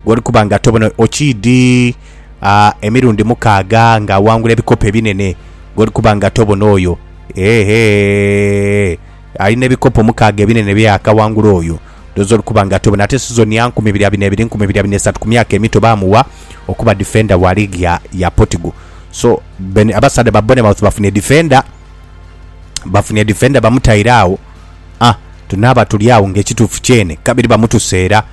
Gh'oli kuba nga tobona okiidhi emirundi mukaaga nga awangula ebikopo ebinene, gh'oli kuba nga tobona oyo, eehhe, alina ebikopo mukaaga ebinene bye yaakawangula oyo, ndhoozi oli kuba nga tobona. Ate sizoni ya nkumi ibiri abina ebiri, nkumi ibiri abina esatu ku myaka emito baamugha okuba difenda wa liigi ya, ya Portugal. So, Ben, abasaadha ba Bournemouth bafunye difenda, bafunye difenda bamutaire agho. A, tunaaba tuli agho ng'ekituufu kyene kabiri bamutuseera.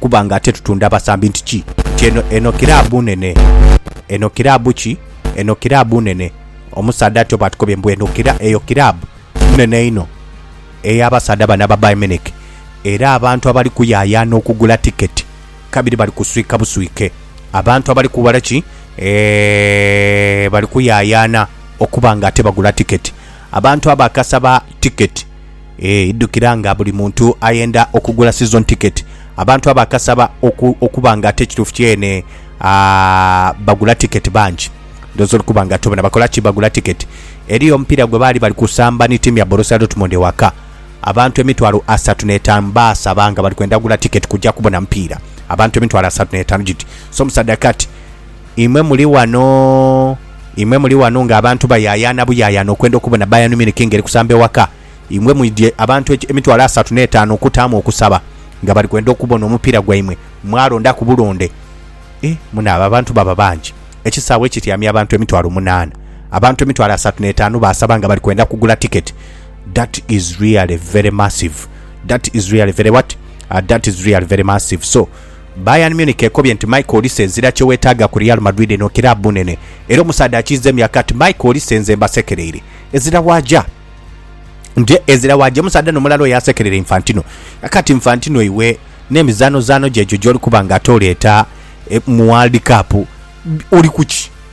kuba nga ate tutunda basambi nti ki nti eno eno kiraabu nene eno kiraabu ki eno kiraabu nene omusaadha atyo baatukobye mbu eno kira eyo kiraabu nene inho ey'abasaadha bano aba Bayern Munich era abantu abali kuyaayaana okugula tiketi kabiri bali kuswika buswike abantu abali kuwala ki eeh bali kuyaayaana okuba nga ate bagula tiketi abantu abo akasaba tiketi Eeh idhukira nga buli muntu ayenda okugula season ticket abantu abo akasaba oku, okuba nga ate ekituufu kyene aah bagula ticket bangi ndhooza oli kuba nga tobona bakola ki bagula ticket eri omupiira gwe baali bali kusamba ni tiimu ya Borussia Dortmund ewaka abantu emitwalo asatu n'etaanu baasaba nga bali kwenda gula ticket kuja kubona mupiira abantu emitwalo asatu n'etaanu giti so musadakati Imwe muli wano, imwe muli wano nga abantu bayaayaana buyaayaana okwenda okubona Bayern Munich ng'eri kusamba ewaka. Imwe mwidhye abantu eki, emitwalo asatu n'etaanu okutaamu okusaba nga bali kwenda okubona omupiira gwaimwe, mwalondaku bulonde. Eh, munaaba abantu baba bangi! Ekisaawe ekityamya abantu emitwalo munaana, abantu emitwalo asatu n'etaanu baasaba nga bali kwenda kugula tiketi. That is really very massive. That is really very what? Ah, that is really very massive. So, Bayern Munich ekobye nti Michael Olise ezira kyewetaaga ku Real Madrid eno kiraabu nene era omusaadha akiiza emyaka ati Michael Olise nze mbasekereire ezira waaja nje ezira waaja omusaadha no mulala oyo asekerera Infantino yaka ti Infantino iwe n'emizaanozaano gyo egyo gy'oli kuba nga ate oleeta mu World Cup oli kuki?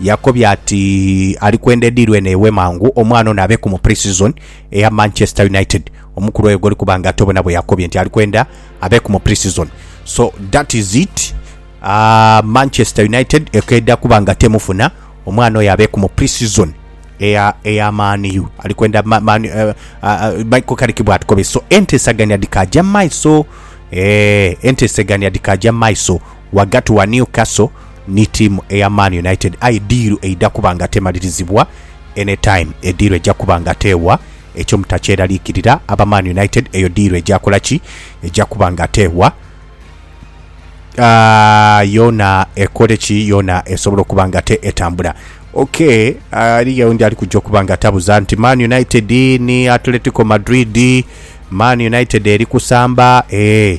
Yakobye ati ali kwenda ediiru eno ewe mangu omwana ono abe ku mu pre-season eya Manchester United. Omukulu oyo gwoli kuba nga tobona bwe yakobye nti ali kwenda abe ku mu pre-season. So that is it, aah, Manchester United ekeeda kuba nga temufuna, omwana oyo abe ku mu pre-season eya eya Man U. Ali kwenda ma, man, uh, uh, Michael Carrick bw'atukobye. So enteesaganya dhikaaja mu maiso, eeh, enteesegania dhikaaja mu maiso ghagati wa Newcastle Ni tiimu eya Man United aye diiru eidha kuba nga temalirizibwa any time. Ediiru eja kuba nga teewa, ekyo mutakyeralikirira aba Man United, eyo diiru eja kola ki? Eja kuba nga teewa. Ah, yoona ekole ki? Yoona esobole okuba nga te etambula. Ok, eriyo oundi ali kuja okuba nga tabuza nti Man United ni Atletico Madrid, Man United eri kusamba? Ee,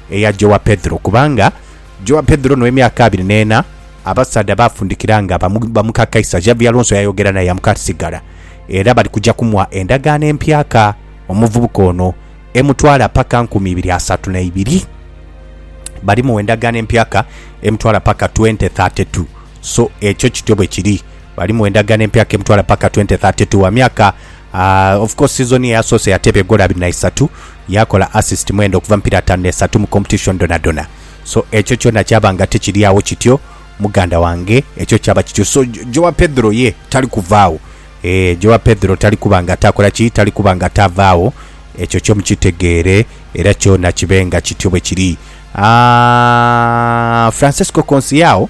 Eya Jowa Pedhro, kubanga Jowa Pedhro no emyaka abiri n'ena, abasaadha baafundikira nga ba muka Kaisa. Xavi Alonso yayogera naye yamuka ati sigala era bali kuja kumugha endagaano empyaka omuvubuka ono emutwala paka nkumi ibiri asatu na ibiri. Bali mugha endagaano empyaka emutwala paka twente thate tu. So ekyo kityo bwe kiri. Bali mugha endagaano empyaka emutwala paka twente thate tu. Wa myaka Aah of course season eyasoose yateeba egoolo abiri na isatu, yaakola assist mwenda okuva mu mipiira ataanu n'esatu mu competition dhonadhona. So ekyo kyona kyaba nga tikiri agho kityo muganda wange, ekyo kyaba kityo. So Joao Pedro ye tali kuva agho. Eeh Joao Pedro tali kuba nga taakola ki? Tali kuba nga taava agho. Ekyo kyo mukitegeere era kyona kibe nga kityo bwe kiri. Aah Francesco Conceiao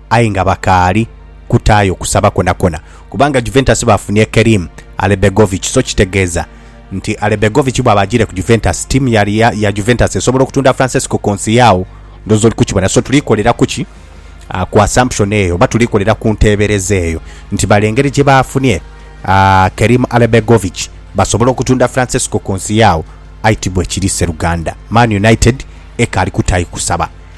aye nga bakaali kutaayo kusaba kwonakona kubanga Juventus baafunye Kerim Alebegovic so kitegeeza nti Alebegovic bwaba ajiire ku Juventus, ttiimu ya ya Juventus esobola okutunda Francesco Conceiao. Ndhooza oli kukibona. So tuli kolera ku ki? Ku assumption eyo oba tuli kolera ku nteebereza eyo nti bale engeri gye baafunye Kerim Alebegovic basobole okutunda Francesco Conceiao. Aye tibwekiri, sseruganda. Man United ekaali kutaayo kusaba.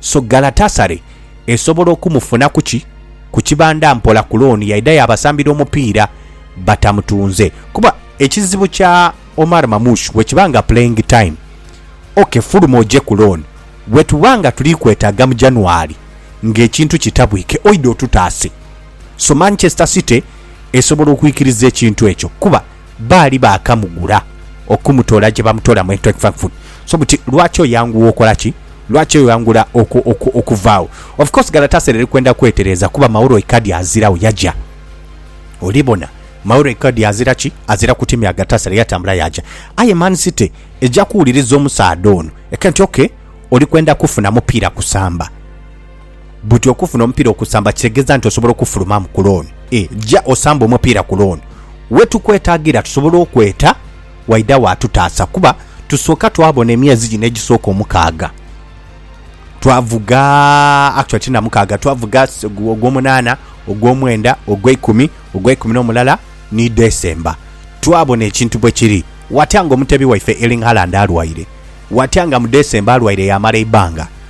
So Galatasaray esobola okumufunaku ki ku kibanda mpola ku looni yaidha yaabasambira omupiira batamutunze? Kuba ekizibu kya Omar Mamouche bwekiba nga playing time, ok fuluma oje ku looni, bwetuba nga tuli kwetaaga mu January ng'ekintu kitabwike oidha otutaase. So Manchester City esobola okwikiriza ekintu ekyo kuba. Baali baakamugula okumutoola gye bamutoola mu Eintracht Frankfurt. So buti lwaki oyangugha okola ki? Lwaki oyangula oku, oku, okuvaagho? Of course Galatasaray eri kwenda kwetereeza kuba Mauro Icardi aziragho, yaja. Oli bona? Mauro Icardi azira ki? Azira ku tiimu ya Galatasaray, yatambula yaja. Aye Man City eja kuwuliriza omusaadha ono, eke nti, Okay, oli kwenda kufuna mupiira kusamba. Buti okufuna omupiira okusamba kitegeza nti osobola okufulumamu ku looni? Ee, ja osambe omupiira ku looni. We tukwetagira tusobola okweta waidagho atutaasa kuba tusooka twabona emyezi gino egisooka omukaaga twavuga, actually ti na mukaaga, twavuga ogw'omunaana, ogw'omwenda, ogw'eikumi, ogw'eikumi n'omulala ni December. Twabona ekintu bwe kiri. Watya nga omuteebi waife Erling Haaland alwaire? Watya nga mu December alwaire yaamala eibanga?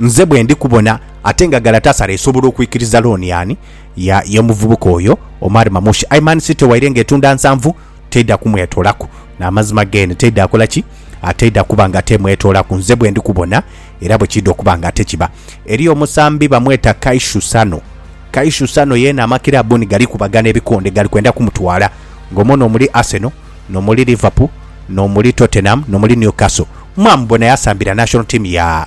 Nze bwe ndi kubona ate nga Galatasaray esobola okwikiriza looni ani? Ya y'omuvubuka oyo Omar Mamouche. Aye Man City waire nga etunda nsanvu, teidha kumwetoolaku. N'amazima geene teidha kola ki? Teidha kuba nga temwetoolaku nze bwe ndi kubona era bwe kiidha okuba nga ate kiba. Eriyo omusambi bamweta Kaishu Sano. Kaishu Sano yeene amakiraabu ni gali kubagana ebikonde gali kwenda kumutwala. Ng'omwo n'omuli Arsenal, n'omuli Liverpool, n'omuli Tottenham, n'omuli Newcastle. Mwamubona yasambira national team ya.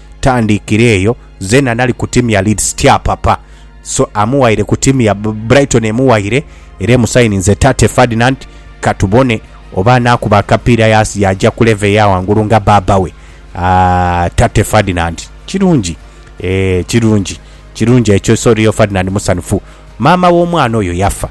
tandikira eyo zena nali ku timu ya Leeds tyapapa so amuwaire ku timu ya Brighton emuwaire era emusayininze Tate Ferdinand katubone oba anakuba akapiira yasi yaja ku level eya wangulu nga baaba we Aah Tate Ferdinand kirungi eeh kirungi kirungi ekyo so Rio Ferdinand musanhufu Maama w'omwana oyo yafa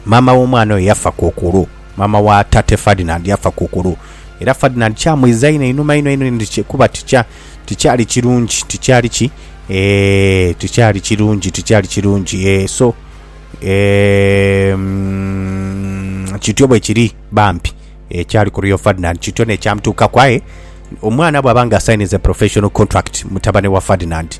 Maama w'omwana oyo yafa kokolo. Maama wa Tate Ferdinand yafa kukulu, era Ferdinand kyamwiza inho einhuma inho inho inho kuba tikya, tikyali kirungi, tikyali ki? Eeh, tikyali kirungi, tikyali kirungi. Eeh, so, eeh, mm, kityo bwe kiri bambi. Eeh, kyali ku Rio Ferdinand, kityo n'ekyamutuukaku. Aye omwana bw'aba nga asayininze professional contract, mutabane wa Ferdinand,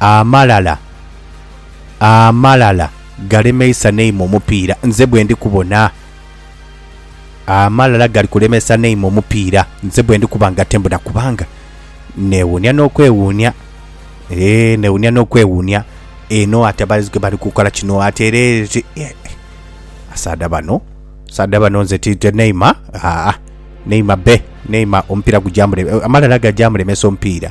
Amalala, amalala galemeisa neime omupiira nze bwendi kubona. Amalala gali kulemesa neime omupiira nze bwendi kuba nga tembona kubanga newuunia n'okwewuunia. Eeh, newuunia n'okwewuunia. Eno ate abalenzi gwe bali kukola kino ate era eti- eh, abasaadha bano abasaadha bano nze ti ti neima aa neima be neima omupiira gujamule amalala gajamulemesa omupiira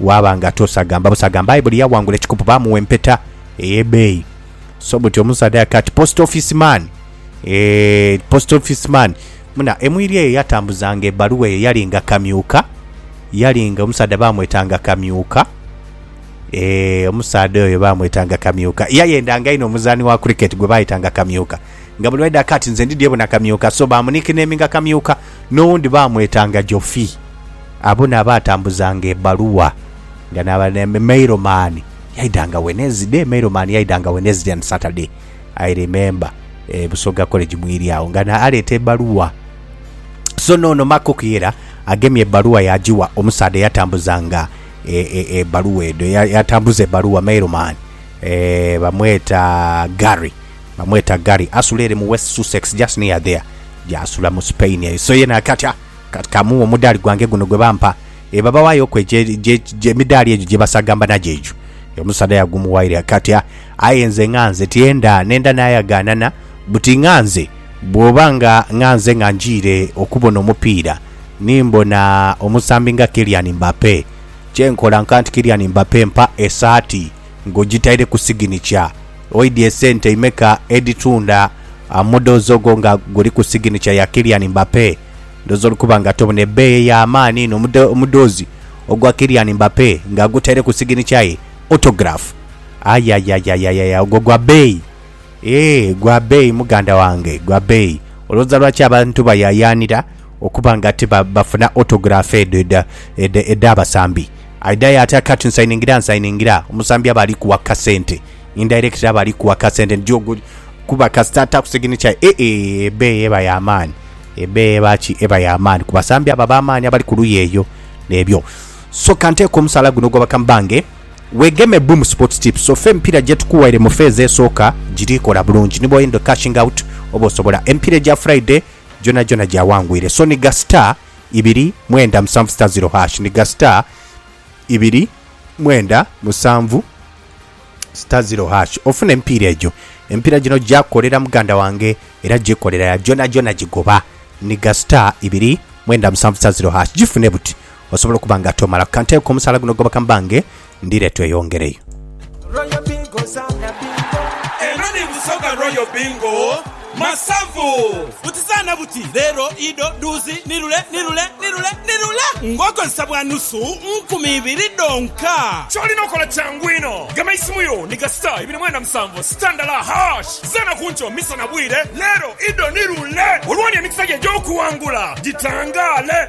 Waaba nga tosagamba busagamba aye buli yawangula ekikopo baamugha empeta ey'ebeeyi. So buti omusaadha yati ati post office man eeh post office man muna emwiri eyo yatambuzanga ebaluwa eyo yalinga kamyuka yalinga omusaadha baamwetanga kamyuka eeh omusaadha oyo baamwetanga kamyuka yayendanga inho omuzaani wa cricket gwe baayetanga kamyuka nga buli lwaidha kati nze ndi dyebona kamyuka so baamunikneminga kamyuka N'owundi baamwetanga Jofi. Abo n'abaatambuzanga ebbaluwa nga n'abali ne mailomani. Yaidanga Wednesday, mailomani yaidanga Wednesday and Saturday, I remember, e Busoga College mwiri agho, nga n'aleeta ebbaluwa. So n'ono Makok yera agemye ebbaluwa yaagiwa omusaadha eyatambuzanga e, e, ebbaluwa edho, eya, eyatambuza ebbaluwa, mailomani, e, bamweta Gary. Bamweta Gary. Asula ere mu West Sussex, just near there gy'asula mu Spain eyo. So ye naati atya? Kati ka mughe omudaali gwange guno gwe bampa. Eba bawaayoku egye, gye, gye, emidaali egyo gye basagamba nagyo egyo. Omusaadha yagumuwaire. Kati a, aye nze nghanze tyenda, nenda naayagaanana, buti nghanze, bw'oba nga nghanze nga njiire okubona omupiira, ni mbona omusambi nga Kylian Mbappe, kye nkola nkanti Kylian Mbappe mpa esaati. Nga ojitaireku siginikya, oidhi esente imeka edhitunda amudhozi ogwo nga guliku siginikya ya Kylian Mbappe? Ndhoozi oli kuba nga tobona ebeeyi ey'amaani eno omudhoozi ogwa Kylian Mbappe nga agutaireku siginikya ye, autograph. Aye aye aye aye aye ogwo gwa beeyi. Eeh, gwa beeyi muganda wange, gwa beeyi. Olowooza lwaki abantu bayaayaanira okuba nga ti ba, bafuna autograph edho edha, edha, edh'abasambi? Aidha y'ati akati nsayiningira nsayiningira, omusambi aba ali kuwa kasente, indirectly aba ali kuwa kasente nti jo guli, kuba kasita ataaku signature ye, e, e, ebeeyi eba ya maani. Ebeeyi eba ki? Eba ya maani ku basambi abo ab'amaani abali ku luuyi eyo. N'ebyo. So, ka nteeke omusaala guno ogw'abakama bange. Weegeme Boom Sports Tips ofe emipiira gye tukuwaire mu feezi esooka giri kola bulungi ni bw'oyenda okukashinga awuti oba osobola. Emipiira egya Furaiday gyonagyona gyawangwire. So ni gha star ibiri mwenda musanvu star ziro hash ni gha star ibiri mwenda musanvu star ziro hash ofune emipiira egyo. Emipiira gino gyakolera muganda wange era gyekolera ya gyonagyona gigoba. Ni gha star ibiri mwenda musanvu star ziro hash gifune buti Osobola okuba nga tomalaku. Ka nteeku omusaala guno goba ka mbange ndi late oyongereyo. Royal Bingo zaana bingo. Eno ni Busoga Royal Bingo Masavu. Buti zaana buti, leero, ido, dhuuzi, ni lule, ni lule, ni lule, ni lule ng'okozesa bwa nusu nkumi ibiri dhonka. Ky'olina okola kyangu inho, gema eisimu yo ni ga star ibiri mwenda musanvu star ndala hash. Zaana ku nkyo, misana, bwire, leero, ido, ni lule olwooni emikisa gyo egy'okuwangula gitangaale.